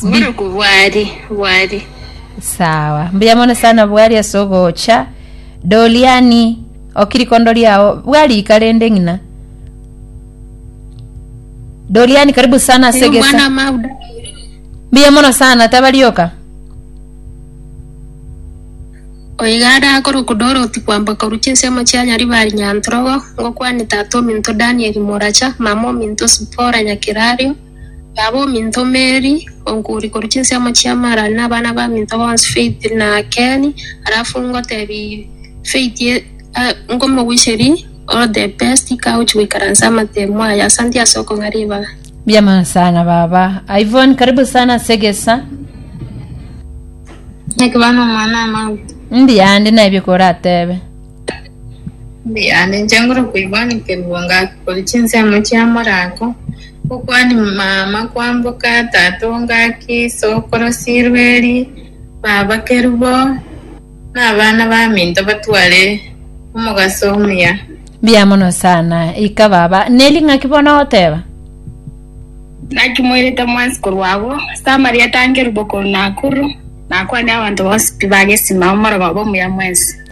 Boruku bwari bwari. Sawa. Mbuya mono sana bwari ase ogocha. Doriani, okirikondo riao bwari ika rende ng'ina. Doriani, karibu sana ase Uyu mwana gesa. mauda. Mbuya mono sana tabarioka. Oigara akoruku Dorothy kwamba koru chinsemo chia Nyaribari Nyantrogo, ngokwane tata ominto Daniel Moracha, mama ominto Sipora Nyakerario, Nabo ominto Meri, onkuri korwa chinsemo chia Mara, na abana b'aminto bonsi Faith na Keni. Alafu ngotebi Faith, eh, nkomogwicheri all the best, ika ochi goikaransa amatemo aya. Asanti ase okong'a ribaga. Mbiama sana baba. Ivon karibu sana ase egesa. Nekebana omwana amauti. Mbuya ndi naebio koratebe. Yaani inche ngoro koigwa nkerigwa ngaki koria chinsemo chia morako, okwani mama kwamboka, tata ongaki, sokoro sirweri, baba kerubo, na abana baminto batware omogaso omuya. Mbuya mono sana ika baba neri ng'aki bono ogoteba Naki moirete mwensi korwa agwo, Samaria tankerubo koru Nakuru, nakwane abanto bonsi pi bagesima omoroba bwa omuya mwensi.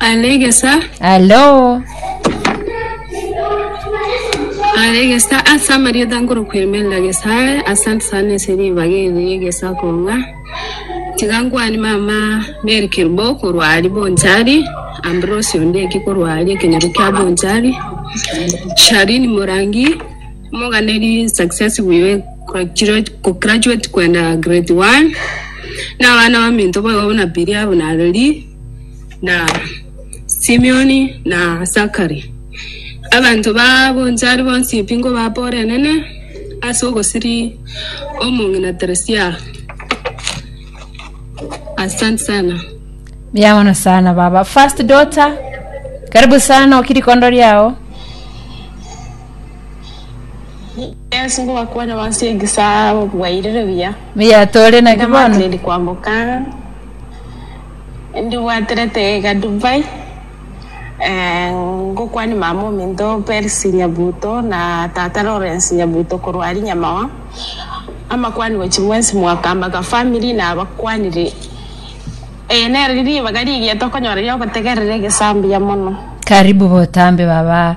Are egesa, Alo. are egesa ase amarieta nkorokoemerera gesa are asante sana ase ribaga eri egesa kong'a tiga nkwane mama Mary Kerubo korwa ari Bonchari Ambrose Ondieki korwa ari ekenyoro kia Bonchari Sharini Morangi Morgan eri successful iga egraduate gograduate kwenda grade one na abana baminto boigo buna Billy abo na Reri na Simeon na Zachary abanto bagonchari bonsi ebingo baborenene ase ogosiri omong'ina Teresia asante sana Mbuya mono sana baba. First daughter, karibu sana oki rikondo riao. Yesu ngobakwane bonsi egesaa bwairire buya. Mbuya tore naki bono. Ndamatiriri kwamboka ndibwaterete iga Dubai eh, ngokwania mama ominto Percy Nyabuto na tata Lawrence Nyabuto korwa ari Nyamawa amakwani gochi mwensi mwakambaka family na abakwanire eh, nero ribaga rigiya tokonyora riogotegerera egesaa mbuya mono. Karibu botambe baba.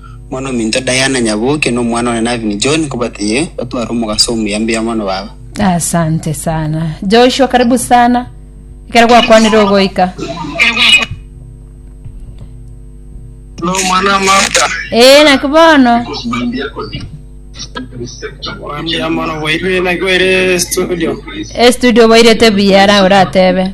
Omwana ominto Diana Nyabuki nomwana one Navin John nkobatiye gotwara omogaso omuya mbuya mono baba. Asante sana Joshua karibu sana ekero gwakwanire ogoika ee naki bono estudio oboirete buya ara oratebe